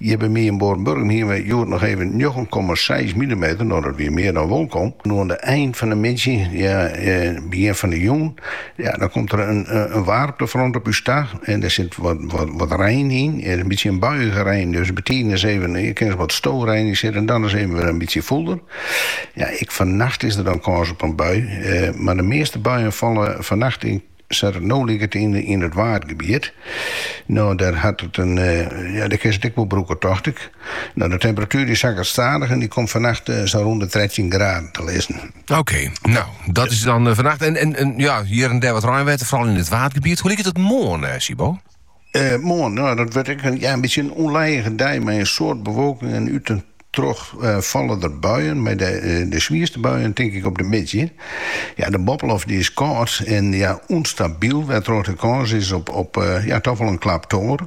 Hjir by my yn Boarnburgum hiene we hjoed noch even njoggen komma seis milimeter, no dat wie mear dan wolkom. Oan de ein fan de middei, begjin fan de jûn, ja dan komt der in waarmtefront op ús ta en dêr sit wat rein yn, in bytsje in buiige rein, dus betiden is even kin der wat storein yn sitte en dan is even wer in bytsje fûler. Ja ek fannacht is der dan kâns op in bui, mar de measte buien falle fannacht yn. Sa't it no liket yn it Waadgebiet. No dêr hat it in, ja dêr kinst it ek wol brûke tocht ik. No de temperatuer dy sakket stadich en dy komt fannacht sa rûn de trettjin graden te lizzen. Oké, no dat is dan fannacht en ja hjir en dêr wat reinwetter, foaral yn it Waadgebiet. Hoe liket it moarn, Sybo? Moarn, no dat wurdt ek in bytsje in ûnlijige dei mei in soad bewolking en út en troch falle der buien, mei de swierste buien tink ik op de middei. De boppeloft dy is kâld en ûnstabyl, wêrtroch't der kâns is op toch wol in klap tonger.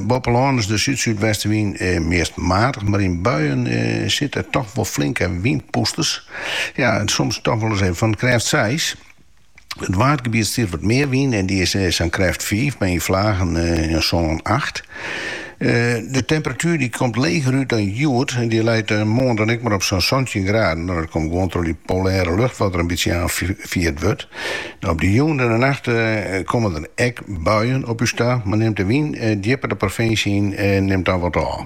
Boppe lân is de súd-súdwestewyn meast matich, mar yn buien sitte der toch wol flinke wynpûsters, soms toch wol ris even fan krêft seis. It Waadgebiet stiet wat mear wyn en dy is sa'n krêft fiif, mar yn flagen in sân acht. De temperatuer dy komt leger út dan hjoed, dy leit moarn dan ek mar op sa'n santjin graden, dat komt gewoan troch dy polêre lucht wat der in bytsje oanfierd wurdt. Op de jûn en de nacht komme der ek buien op ús ta, mar nimt de wyn djipper de provinsje yn, nimt dan wat ôf.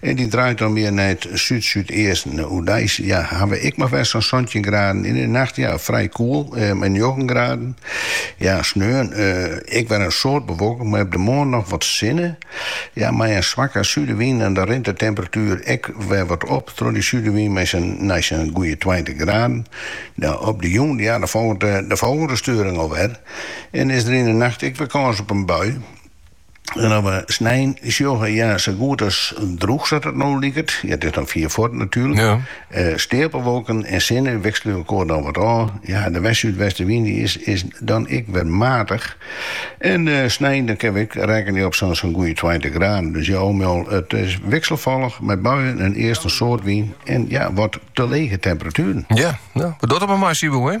En dy draait dan mear nei it súd-súdeasten. Oerdeis ja, ha we ek mar wer sa'n santjin graden. Yn 'e nacht ja, frij koel, mei njoggen graden. Ja, sneon, ek wer in soad bewolking, mei op de moarn noch wat sinne. Ja, mei in swakke súdewyn dan rint de temperatuer ek wer wat op troch dy súdewyn mei sa'n nei sa'n goeie tweintich graden. Ja, op de jûn ja, dan folget de folgjende steuring al wer en is der yn 'e nacht ek wer kâns op in bui. En as we snein sjogge, ja, sa goed as droeg sa't it no liket. Ja, it is dan fier fuort natuerlik. Ja. Eh, steapelwolken en sinne wikselje elkoar dan wat ôf. Ja, de west-súdwestewyn dy is, is dan ek wer matich. En eh, snein dan kin we ek rekkenje op sa'n sa'n goeie tweintich graden. Dus ja, al mei al, it is wikselfallich mei buien en earst in soad wyn en ja, wat te lege temperatueren. Ja, no, we dogge it der mar mei, Sybo.